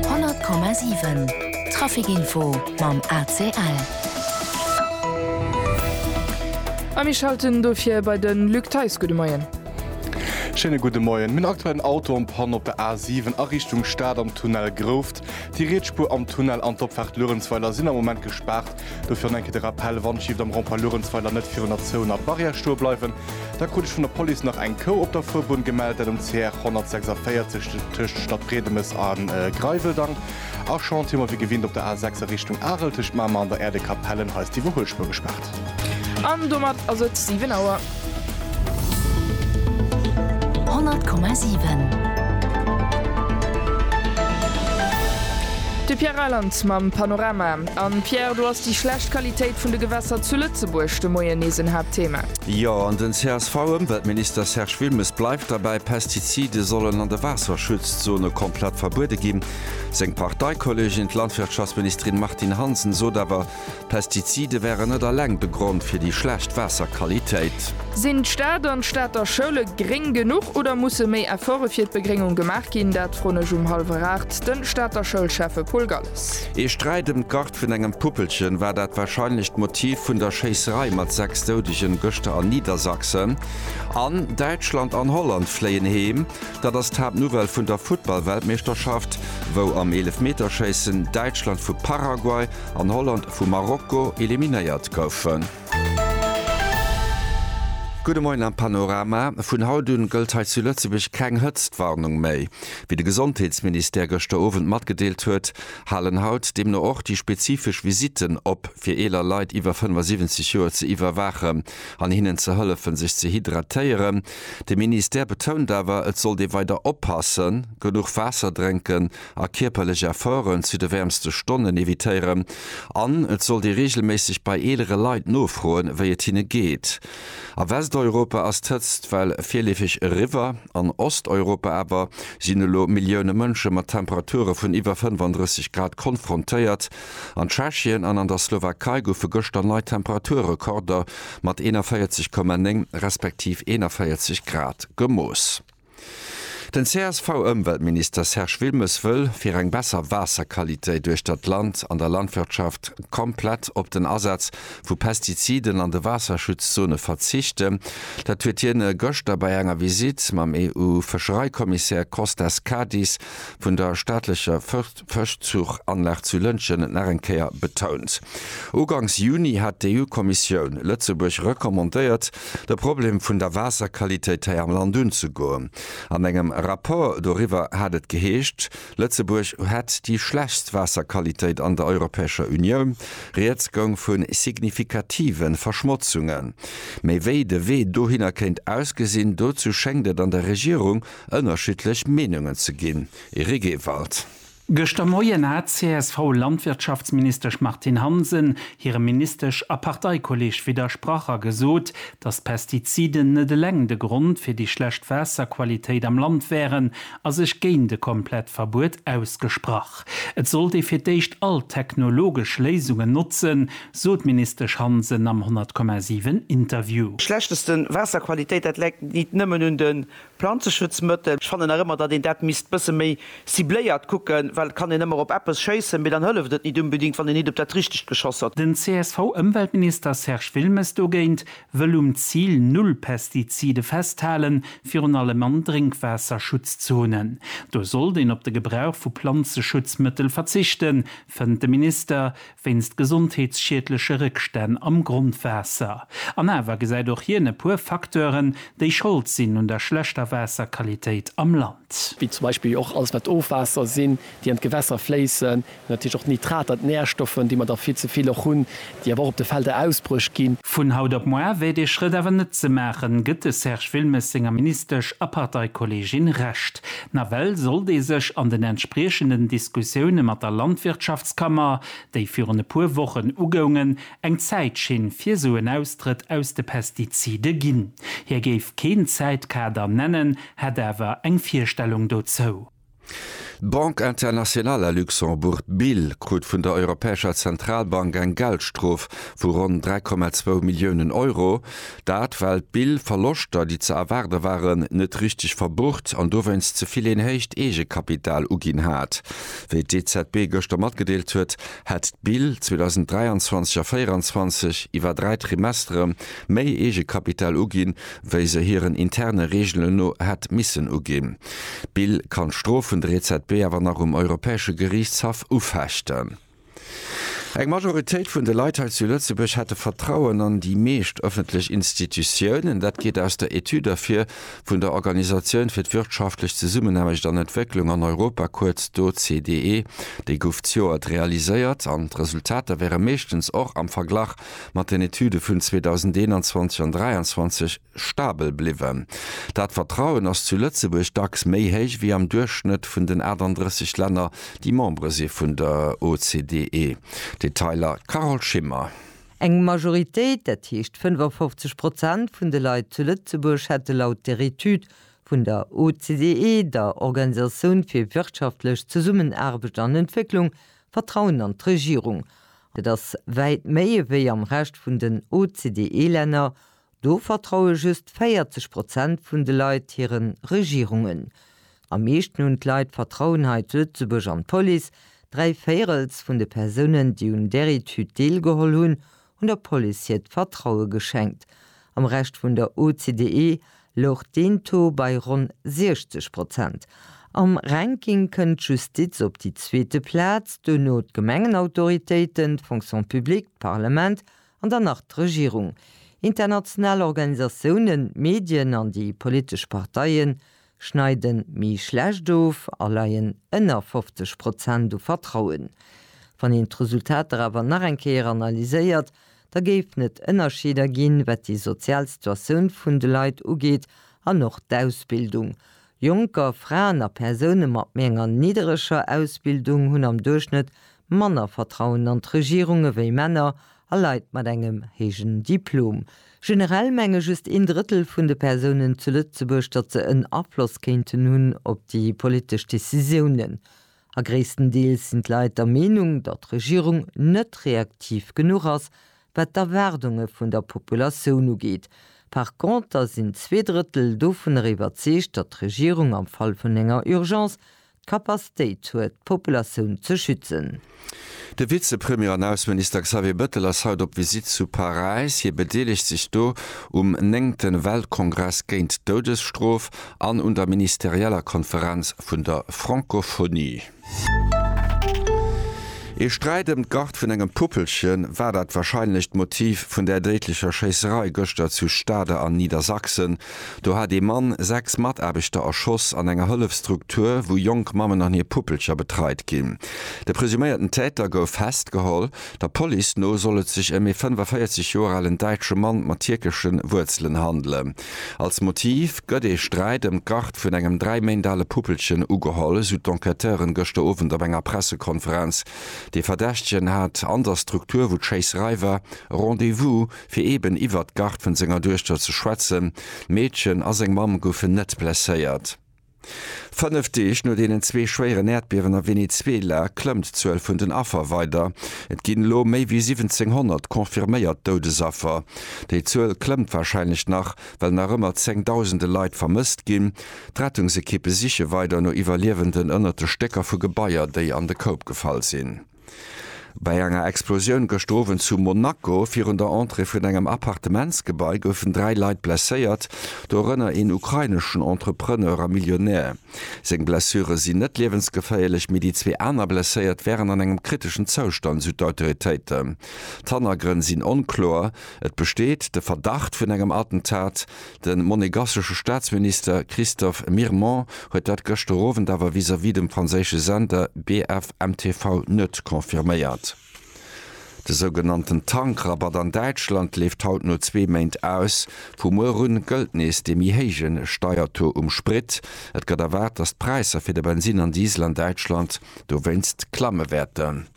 100,7 Trafic Info mam ACL. A mir schalten dofir bei de Luc Theis. Gudde Moien. Schéine gudde Moien. Mir hunn aktuell en Auto en Panne op der A7 a Richtung Stad am Tunnel Grouft. Déi riets Spuer am Tunnel an d'Opfaart Luerenzweiler sinn am Moment gespaart. Dofir an eng Kéier de Rappell, Wann Shift am Rond-point Luerenzweiler net virun der Zone a Barrière stoe bleiwen, da krut ech vun der Police nach eng Kou op der Fuerbunn gemellt, dat um CR 146 tëscht Stadbriedemes a Greiweldang. A Chantier hu mer wéi gewinnt op der A 6 a Richtung Arel tëscht Mamer an der Äerdekapellen, hei ass d'Iwwerhuelspuer gespaart. An domat ass et 7 Auer. De Pierre Reyland mam Panorama. An Pierre, do ass déi schlecht Qualitéit vun de Gewässer zu Lëtzebuerg de Moien nees en Haaptthema. Jo, an den CSV-Ëmweltminister Serge Wilmes bleift derbäi, Pestizide sollen an de Waasserschutzzone komplett verbuede ginn. Seng Parteikollegin, d'Landwirtschaftsministerin Martine Hansen sot awer, Pestizide wären net alleng de Grond fir déi schlecht Waasserqualitéit. Sinn d'Stad an d'Stater Schoule gréng genuch oder musse méi Efforte fir d'Begréngung gemaach ginn? Dat froen ech um hallwer 8 de Stater Schoulschäffe Paul Galles. Ee Sträit ëm d'Gart vun engem Puppelchen war dat warscheinlecht Motiv vun der Schéisserei mat 6 Doudegen gëschter an Niedersachsen. An Däitschland an Holland fléien heem. Dat ass d'Haaptnouvelle vun der Futtballweltmeeschterschaft, wou am Eelefmeterschéissen Däitschland vu Paraguay an Holland vu Marokko eliminéiert goufen. Gudde Moien am Panorama. Vun haut un gëllt hei zu Lëtzebuerg keng Hëtztwarnung méi. Wéi de Gesondheetsministère gëschter Owend matgedeelt huet, halen haut deemno och déi spezifesch Visitten op, fir eeler Leit iwwer 75 Joer ze iwwerwaachen an hinnen ze hëllefen, sech ze hydratéieren. De Ministère betount awer, et sollt ee weider oppassen, genuch Waasser drénken a kierperlech Efforten zu de wäermste Stonnen evitéieren an et sollt ee reegelméisseg bei eelere Leit nofroen, wéi et hinne geet. A Westeuropa ass d'Hëtzt well virleefeg eriwwer. An Osteuropa awer sinn elo Millioune Mënsche mat Temperature vun iwwer 35 Grad konfrontéiert. An Tschechien an an der Slowakei goufe gëschter nei Temperaturrekorder mat 41,9 respektiv 41 Grad gemooss. Den CSV-Ëmweltminister Serge Wilmes wëll fir eng besser Waasserqualitéit uechter d'Land an der Landwirtschaft komplett op den Asaz vu Pestiziden an de Waasserschutzzone verzichten. Dat huet hien gëschter bei enger Visitt mam EU-Fëschereikommissär Kostas Kadis vun der staatlecher d'Fëschzuchanlag zu Lëntgen et nach eng Kéier betount. Uganks Juni hat d'EU-Kommissioun Lëtzebuerg recommandéiert, de Problem vun der Waasserqualitéit hei am Land unzegoen. An engem Rapport doriwwer hat et geheescht, Lëtzebuerg hätt déi schlechtst Waasserqualitéit an der Europäescher Unioun. Rieds goung vu signifikative Verschmotzungen. Mee wéi de Wee dohinner kéint ausgesinn, dozou schéngt et an der Regierung ënnerschiddlech Meenungen ze ginn. Eric Ewald. Gëschter Moien hat d'CSV-Landwirtschaftsministesch Martine Hansen hirem Ministesch a Parteikolleeg widdersprach a gesot, datt d'Pestiziden net eleng de Grond fir déi schlecht Waasserqualitéit am Land wären a sech géint e komplett Verbuet ausgesprach. Et sollt ee fir d'éischt all technologesch Léisungen notzen, sot d'Ministesch Hansen am 100,7 Interview. Schlechtesten Waasserqualitéit, dat läit nit nëmmen un de Planzeschutzmëttel, ech fannen nach ëmmer, datt een dat misst bësse méi cibléiert kucken, well et kann een ëmmer op eppes schéissen, mee dann hëlleft et nit unbedingt, wann een nit op dat Richtegt geschoss huet. Den CSV-Ëmweltminister Serge Wilmes dogéint wëll um Zil Null Pestizide festhalen, virun allem an Drénkwaasserschutzzonen. Do sollt een op de Gebrauch vu Planzeschutzmëttel verzichten, fënnt de Minister, wéinst gesondheetsschiedleche Réckstänn am Grondwaasser. An awer gesäit och hien e puer Facteuren, déi Schold sinn un der schlechter Waasserqualitéit am Land. Wéi zum Beispill och alles, wat d'Ofwaasser sinn, déi an d'Gewässer fléissen. Natierlech och d'Nitrater, d'Närstoffen, déi mer der vill ze vill och hunn, déi awer och op de Felder ausbruecht ginn. Vun haut op moar wär dee Schrëtt awer net ze maachen, gëtt de Serge Wilmes senger Ministesch a Parteikolleegin Recht. Nawell sollt ee sech an den entspriechenden Diskussioune mat der Landwirtschaftskammer, déi virun e puer Wochen ugoungen, eng Zäitschinn fir esou en Austrëtt aus de Pestizide ginn. Hie géif keen Zäitkader nennen, hätt awer eng Virstellung dozou. D'Banque Internationale à Luxembourg, BIL, krut vun der Europäescher Zentralbank eng Geldstrof vu ronn 3,2 Milliounen Euro, Dat well d'Bill Verloschter, déi ze erwaarde waren, net richteg verbucht an dowéinst ze vill een héicht Eegekapital uginn hat. Wéi d'EZB gëschter matgedeelt huet, hätt d'Bill 2023 a 2024 iwwer dräi Trimestere méi Eegekapital uginn, wéi se hiren interne Reegelen no hätt missen uginn. D'Bill kann d'Strof vun der EZB awer nach um Europäesche Geriichtshaff ufechten. Eng Majoritéit vun de Leit hei zu Lëtzebuerg hätte Vertrauen an déi meescht ëffentlech Institutiounen. Dat geet aus der Etüd ervir vun der Organisatioun fir d'wirtschaftlech Zesummenaarbecht an Entwécklung an Europa, kuerz d'OCDE. Déi gouf zejoert realiséiert an d'Resultater wäre meeschtens och am Verglach mat den Etüde vun 2021 an 2023 stabel bliwwen. Dat Vertrauen ass zu Lëtzebuerg dacks méi héich wéi am Duerchschnëtt vun den 38 Länner, déi Membere si vun der OCDE. Detailer, Carole Schimmer. Eng Majoritéit, dat heescht 55 Prozent vun de Leit zu Lëtzebuerg hätte laut der Etüd vun der OCDE, der Organisatioun fir wirtschaftlech Zesummenaarbecht an Entwécklung, Vertrauen an d'Regierung. Dat ass wäit méi ewéi am Rescht vun den OCDE-Länner, Do vertraue just 40 Prozent vun de Leit hiren Regierungen. Am meeschten hunn d'Leit Vertrauen hei zu Lëtzebuerg an d'Police, dräi Véirels vun de Persounen, déi un där Etüd deelgeholl hunn, hunn der Police hiert Vertraue geschenkt. Am Rescht vun der OCDE louch deen Taux bei ronn 60 Prozent. Am Ranking kënnt d'Justiz op déi zweete Plaz, duerno d'Gemengenautoritéiten, d'Fonction publique, d'Parlement An dann nach d'Regierung, international Organisatiounen, d'Medien an déi politesch Parteie schneide méi schlecht of a leien ënner 50 Prozent u Vertrauen. Wann een d'Resultater awer nach eng Kéier analyséiert, da géifen et Ënnerscheeder ginn, wat déi sozial Situatioun vun de Leit ugeet an och d'Ausbildung, Jonker, Fraen a Persoune mat méi enger niddereger Ausbildung hunn am Duerchschnëtt manner Vertrauen an d'Regierung ewéi Männer a Leit mat engem héijen Diplom. Generell menge just een Drëttel vun de Persounen zu Lëtzebuerg, datt se en Afloss kéinten hunn op déi politesch Decisiounen. A gréisstendeels sinn d'Leit der Meenung, datt d'Regierung net reaktiv genuch ass, wat d'Erwaardunge vun der Populatioun ugeet. Par conter sinn zwee Drëttel dovunner iwwerzeegt, datt d'Regierung am Fall vun enger Urgence d'Kapastéit huet, d'Populatioun ze schützen. De Vizepremier an Ausseminister Xavier Bettel ass haut op Visitt zu Paräis. Hie bedeelegt sech do um néngte Weltkongress géint d'Doudesstrof an un der ministerieller Konferenz vun der Francophonie. Ee Sträit ëm d'Garde vun engem Puppelchen war dat wahrscheinlecht Motiv vun där déidlecher Schéisserei gëschter zu Stade an Niedersachsen. Do hat ee Mann sechs Mataarbechter erschoss an enger Hëllefsstruktur, wou jonk Mammen an hir Puppelcher betreit ginn. De presuméierten Täter gouf festgeholl. Der Police no soll et sech ëm ee 45 Joer alen däitsche Mann mat tierkesche Wuerzelen handelen. Als Motiv gëtt ee Sträit ëm d'Garde vun engem dräi Méint ale Puppelchen ugeholl, esou d'Enquêteuren gëschter Owend op enger Pressekonferenz. Dee Verdächtegen hat an der Struktur, wou d'Schéisserei war, Rendez-vous. fir eben iwwert d'Garde vun senger Duechter ze schwätzen. D'Meedchen a seng Mamm goufen net blesséiert. Fënnef Deeg no deenen zwee schwéieren Äerdbiewen a Venezuela klëmmt d'Zuel vun den Affer weider. Et ginn elo méi wéi 1.700 confirméiert Doudesaffer. Déi Zuel klëmmt warscheinlech nach, well nach ëmmer zéng Dausende Leit vermësst ginn. D'Rettungsekippe siche weider no Iwwerliewenden ënnert de Stécker vu Gebaier, déi an de Koup gefall sinn. Bei enger Explosioun gëschter Owend zu Monaco virun der Entrée vun engem Appartementsgebai goufen dräi Leit blesséiert, dorënner een ukraineschen Entrepreneur a Millionär. Seng Blessure sinn net liewensgeféierlech, mee déi zwee aner Blesséiert wären an engem kriteschen Zoustand, sou d'Autoritéiten. D'Hannergrënn sinn onkloer, et besteet de Verdacht vun engem Attentat. De monegassesche Staatsminister Christophe Mirmont huet dat gëschter Owend awer vis-à-vis dem franséische Sender BFMTV net confirméiert. De sougenannten Tankrabatt an Däitschland leeft haut no zwee Méint aus. Vu muer un gëllt nees dee méi héije Steiertaux um Sprit. Et gëtt erwaart, datt d'Präisser fir de Bensin an Diesel an Däitschland dowéinst klamme wäerten.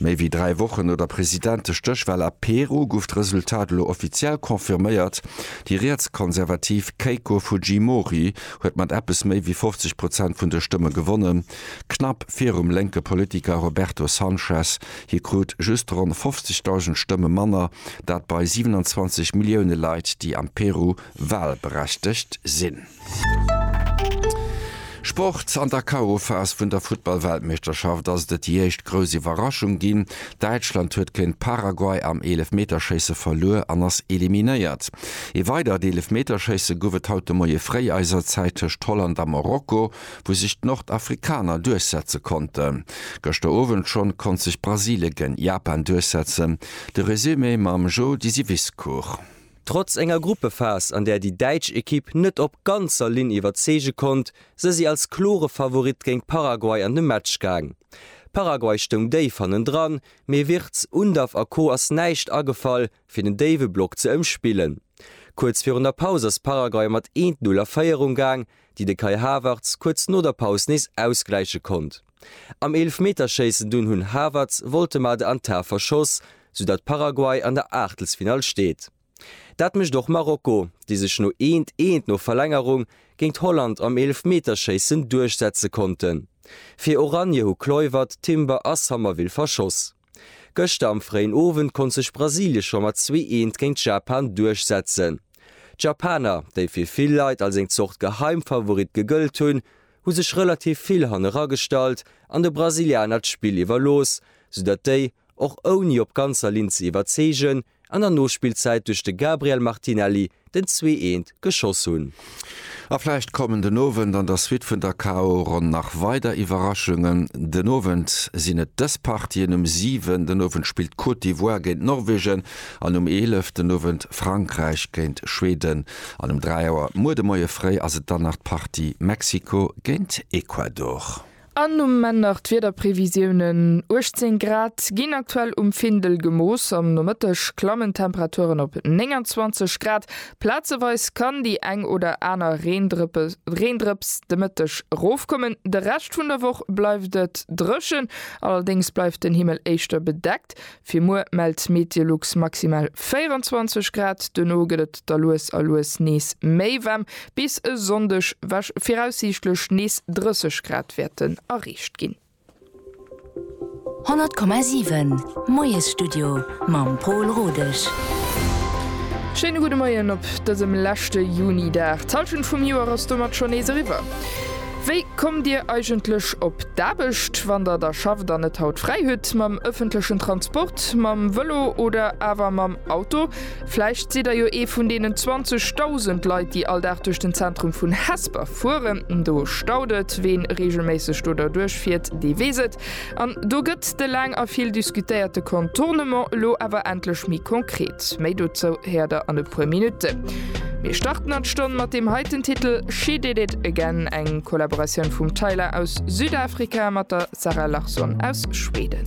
Méi wéi dräi Wochen no der Presidentestéchwal a Peru gouf d'Resultat elo offiziell confirméiert, Déi rietskonservativ Keiko Fujimori huet mat eppes méi wéi 50 Prozent vun de Stëmme gewonnen, knapp virum lénke Politiker Roberto Sanchez. Hie krut just ronn 50.000 Stëmme manner, dat bei 27 Millioune Leit, déi am Peru walberechtegt sinn. Sport, An der KO-Phas vun der Futtball-Weltmeeschterschaft ass et et déi éischt grouss Iwwerraschung ginn. Däitschland huet géint Paraguay am Eelefmeterschéisse verluer an ass eliminéiert. Ee weidert Eelefmeterschéisse gouf et haut de Moie fréi eiser Zäit tëscht Holland a Marokko, wou sech d'Nordafrikaner duerchsetze konnten. Gëschter Owend schonn konnt sech Brasilien géint Japan duerchsetzen. De Resumé mam Jody Syviscourt. Trotz enger Gruppephas, an där déi däitsch Ekipp net op ganzer Linn iwwerzeege konnt, se si als klore Favorit géint Paraguay an de Match gaang. Paraguay stoung déif hannendran, mee Wirtz, Undav a Co ass näischt agefall, fir den déiwe Block ze ëmspillen. Kuerz virun der Paus ass Paraguay mat 1, 0 a Féierung gaang, déi de Kai Havertz kuerz no der Paus nees ausgläiche konnt. Am Eelefmeterschéissen dunn hunn Havertz, Woltemade an Tah verschoss, sou datt Paraguay an der Aachtelsfinall steet. Dat mécht och Marokko, déi sech no eent, eent no Verlängerung géint Holland am Eelefmeterschéissen duerchsetze konnten. Fir Oranje hu Kluivert, Timber a Sommerville verschoss. Gëschter am fréien Owend konnt sech Brasilien scho mat zwee Eent géint Japan duerchsetzen. D'Japaner, déi fir vill Leit als eng Zort Geheimfavorit gegëllt hunn, hu sech relativ vill haneragestallt an de Brasilianer d'Spill iwwerlooss, soudatt déi, och ouni op ganzer Linn ze iwwerzeegen, an der Nospillzäit duerch de Gabriel Martinelli den zwee eent geschoss hunn. A vläicht kommen den Owend an der Suite vun der KO-Ronn nach weider Iwwerraschungen. Den Owend sinn et dës Partien, Um 7 den Owend spillt d'Côte d'Ivoire géint Norwegen an um 11 den Owend Frankräich géint Schweden. An um 3 Auer muer de Moie fréi ass et dann nach d'Partie Mexiko géint Ecuador. An nom Männert d'Wiederprevisiounen, 18 Grad ginn aktuell um Findel gemooss. Am Nomëtteg klammen d'Temperaturen op 29 Grad. Plazeweis kann déi eng oder aner Reendrëps de Mëtteg erofkommen. De Rescht vun der Woch bleift et dréchen, allerdéngs bleift den Himmel éischter bedeckt. Fir muer mellt d'Meteolux maximal 24 Grad, duerno gëtt et da lues a lues nees méi waarm, bis e Sonndeg wech viraussiichtlech nees 30 Grad wäerten erreecht ginn. 100,7 Moiesstudio mam Pol Rodesch. Schéine gudde Moien op dësem leschte Juni-Dag. D'Hallschent vum Joer ass domat schonn nees eriwwer. Wéi kommt Dir eigentlech op d'Aarbecht, wann Der da schafft an net haut fräi hutt? Mam ëffentlechen Transport, mam Vëlo oder awer mam Auto? Vläicht sidd Der jo ee vun deenen 20 Dausend Leit, déi all Dag duerch den Zentrum vun Hesper fueren. Do staut et. Ween reegelméisseg do derduerch fiert, dee weess et. An do gëtt de laang a vill diskutéierte Contournement elo awer endlech méi konkret. Méi dozou héiert der an e puer Minutten. Mir starten an d'Stonn mat deem heiten Titel She Did It Again, eng Kollaboratioun vum Tyla aus Südafrika mat der Zara Larsson aus Schweden.